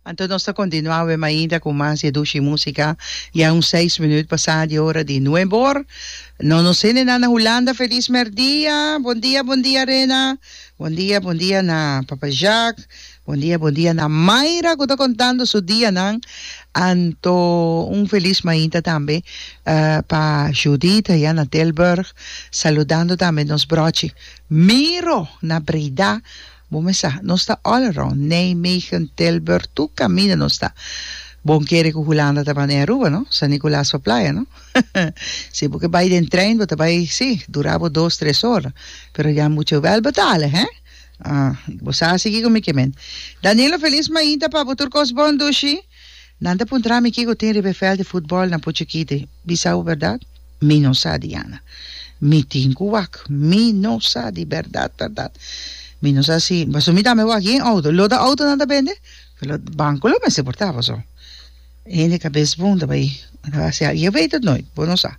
Anto nos ta kontinuá web ainda ku mas di e dushi músika. Ya un seis minüt pasá di e ora di nuebe or. No nos hende nan na Hulanda felis mèrdia. Bon dia, bon dia Rena. Bon dia, bon dia na Papa Jààk. Bon dia, bon dia na Mayra ku ta kontando su dianan. Anto un felis mainta tambe pa Judita ya na Tilburg. Saludando tambe nos bròchi Miro na Breda. Bo me sa, nos ta all around, Nijmegen, Tilburg, tur caminda nos ta. Bon kere cu Hulanda ta band'e Aruba, no? San Nicolas pa playa, no? Si bo ke bai den trein, bo ta bai, si, dura bo dos, tres ora, pero ya mucho wel betale, he? Ah, bo sa a sigui cu mi ke men. Daniela Feliz mainta pa bo tur cos bon, Dushi. Nan ta puntra mi kico tin riba e veld di futbol na Puchekiti. Di sa bo berdad? Mi no sa, Diana. Mi tin cu wak. Mi no sa, di berdad berdad. Mi no sa si, pasobra mi tambe wak yen auto. Lo ta auto nan ta bende? Lo, banco lo mester por ta, pasobra e hende cabes bon ta bay. Bo ta bay hasi algo. Yo weet het nooit. Bo no sa.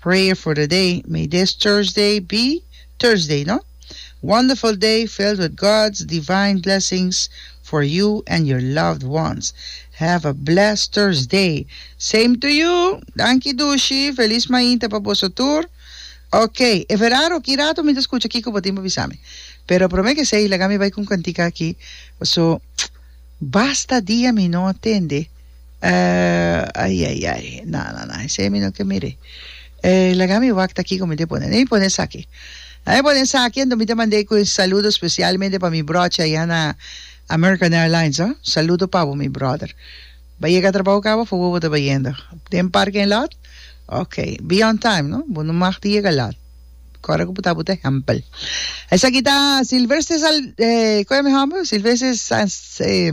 Prayer for the day, May this Thursday be Thursday no wonderful day filled with God's divine blessings for you and your loved ones. Have a blessed Thursday! Same to you! Danki Dushi! Feliz mainta pa boso tur! Ok, e verano ki rato mi ta scucha kico bo tin pa bisa mi. Pero prome ke esey laga mi bay cu un cantica aki, paso basta dia mi no a tende. Eh, ai, ai, ai. Na, na, na, esei mi no ke mir'é. Eh, laga mi wak t'akí ku mi te pone. Dei pone esaki. Dei mi pone esaki, anto mi te mand'é ku e saludo spesialmente pa mi bròchi ayá na American Airlines, oh. Saludo pa bo, mi bròder. Bo yega trabou kaba, fu bo bo ta bai yendo den parking lot? Ok. Be on time, no? Bo no mag ta yega lot. Kòrda ku bo ta bo ta hèmpel. Esaki ta Silvester Sal, eh, ku e mi hòmber? Silvester Sal, eh.